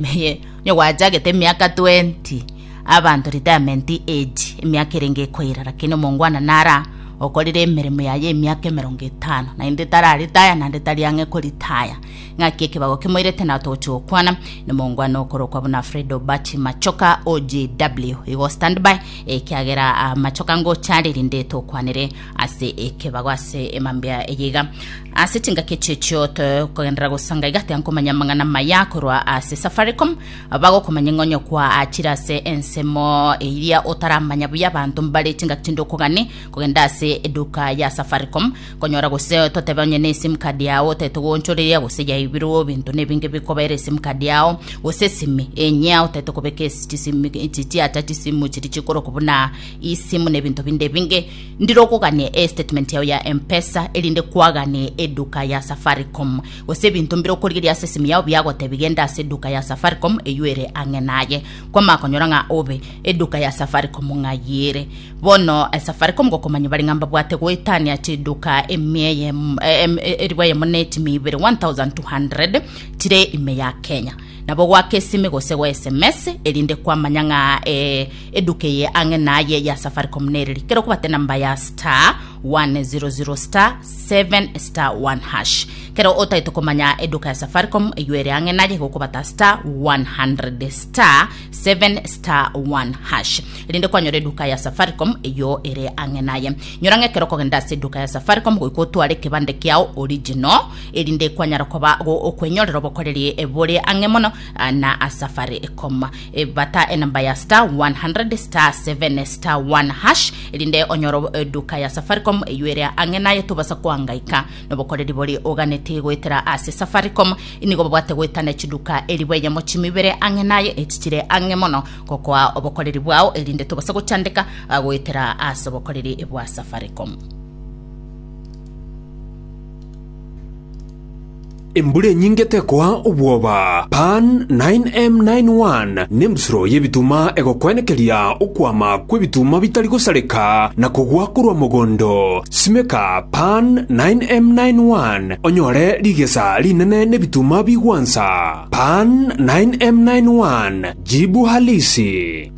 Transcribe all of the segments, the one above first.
Inye onye gwachagete emiaka twenti abanto retirement age emiaka ere ngekoira lakini omongwana nara okorire emeremo yaye emiaka emerongo etano naende tararitaya naende tari ang'e koritaya ng'aki ekebago kemoirete na tochi gokwana na omongwana okorokwa buna Fred Obachi Machoka OJW igo standby ekiagera ah, Machoka ngocha rerinde tokwanere ase ekebago ase emambia eye iga ase chingaki echi echio tokogenderera gosanga iga tiankomanya amang'ana maya korwa ase safaricom bagokomanya ng'onyo kwa achire ase ensemo eria otaramanya buya abanto mbare chingaki chinde okogani kogenda ase eduka ya safaricom konyora gose totebe onye ne sim card yao otete goonchoreria gose yaibirwe ebinto na ebinge bikobera esim card yao gose esimi enyia otete kobeka esi chisimi chiacha chisimu chiri chikoroku buna isimu na ebinto binde ebinge Ndire okogania estatement yao ya Mpesa erinde kwagane eduka ya Safaricom. Gose ebinto mbire okorigeria ase esimu yao biagotebi genda ase eduka ya Safaricom eyio ere ang'e naye. Kwamanya konyora ng'a obe eduka ya Safaricom ng'ai ere. Bono eh, Safaricom gokomanya bare ng'a mbabwate goetania chiduka emia eye em- em- eri bwayemo ne etimi ibere 1200 chire ime ya Kenya. Nabo goaka esimi gose go SMS erinde kwamanya ng'a eh, Eduka eye ang'e naye ya Safaricom nereri kero kobate namba ya star 100 star 7 star 1 hash. Kero otaete komanya eduka ya Safaricom eywo ere ang'e naye gokobata star 100 star 7 star 1 hash. Erinde kwanyora eduka ya Safaricom eywo ere ang'e naye. Nyora ng'e kero kogenda ase eduka ya Safaricom goika otware ekebande kiao original erinde kwanyara koba go- okwenyorera obokoreri bore ang'e mono ah, na Safaricom. Bata enamba ya star 100 star 7 star 1 hash erinde onyore obo- eduka ya safaricom eywo ere ang'e naye tobasa koangaika nobokoreri bori oganeti goetera ase safaricom inigo babwate goetana echiduka eribwa enyemo chimi bere ang'e naye echi chire ang'e mono gokoa obokoreri bwao erinde tobasa gochandeka ah, goetera ase obokoreri bwa safaricom Embura enyinge tekoa obwoba. Pan 9M91 nembusuro y'ebituma egokwenekeria okwama kw'ebituma bitari gosareka na kogwa korwa mogondo. Simeka Pan 9M91 onyore rigesa rinene n'ebituma bigwansa. Pan 9M91 jibu halisi.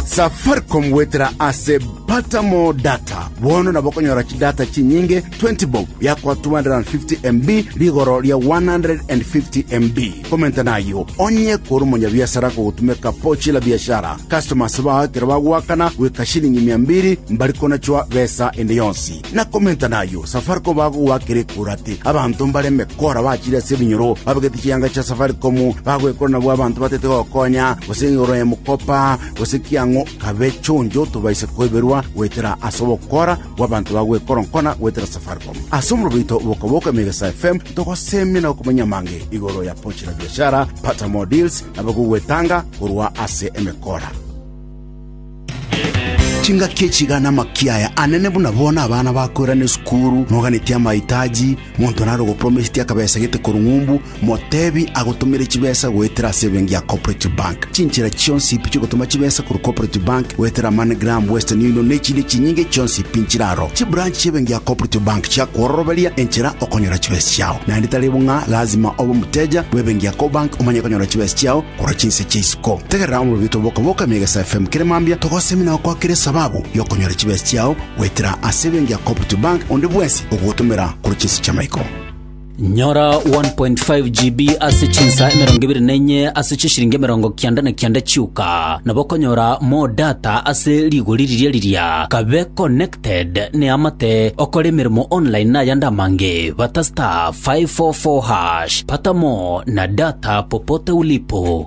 Safaricom goetera ase Pata More Data. Bono nabo okonyora chidata chinyinge 20 bob biakoa 250 MB rigoro ria 150 MB. Komenta nayo, onye kore omonyabiasara kogotumeka pochi la biashara, customers bao ekero bagoakana goika shilingi mia mbiri mbari konachwa besa ende yonsi. Na komenta nayo, Safaricom bagogoakera ekura ati abanto mbare emekora bachire ase ebinyoro babegete chianga chia Safaricom bagwekora nabwo abanto batete gokonya gose igoro ya mokopa gose kiang'o kabe chonjo tobaise koiberwa goetera ase ogokora bw'abanto bagoekoronkona goetera Safaricom. Ase omorobo oito oboka-boka Emegesaa FM togoseemia na gokumanyia amange igoro ya Pochi la Biashara, Pata More Deals na abagogwetanga korwa ase emekora. Chingaki echi iga namakia aya anene buna bono abana bakoirana esukuru, noganetie amaitaji, monto nare ogopromesetie akabesa gete korwa ng'umbu, Motebi agotomere chibesa goetera ase ebenki ya Cooperative Bank. Chinchera chionsi pi chigotoma chibesa korwa Cooperative Bank goetera MoneyGram, Western Union na echinde chinyinge chionsi pi nchire aro. Chibranch chi'ebenki ya Cooperative Bank chiakwororoberia enchera okonyora chibesa chiao. Naende tari bo ng'a lazima obe omoteja bw'ebenki ya Cobank omanye konyora chibesa chiao korwa chinse chia isiko. Tegerera omorobioto bw'okoboka emia egesa FM kere mambia togosemi na gokwakera esababu y'okonyora chibesa chiao goetera ase ebenki ya Cooperative Bank onde bwensi ogogotomera korwa chinse chi'amaiko. Nyora 1.5 GB ase chinsa emerongo ebere na enye ase chishiringi emerongo kianda na kianda chioka. Nabo okonyora more data ase rigori riria riria. Kabe connected ne amate okore emeremo online na ayande amange. Bata star 544 hash. Pata more na data popote ulipo.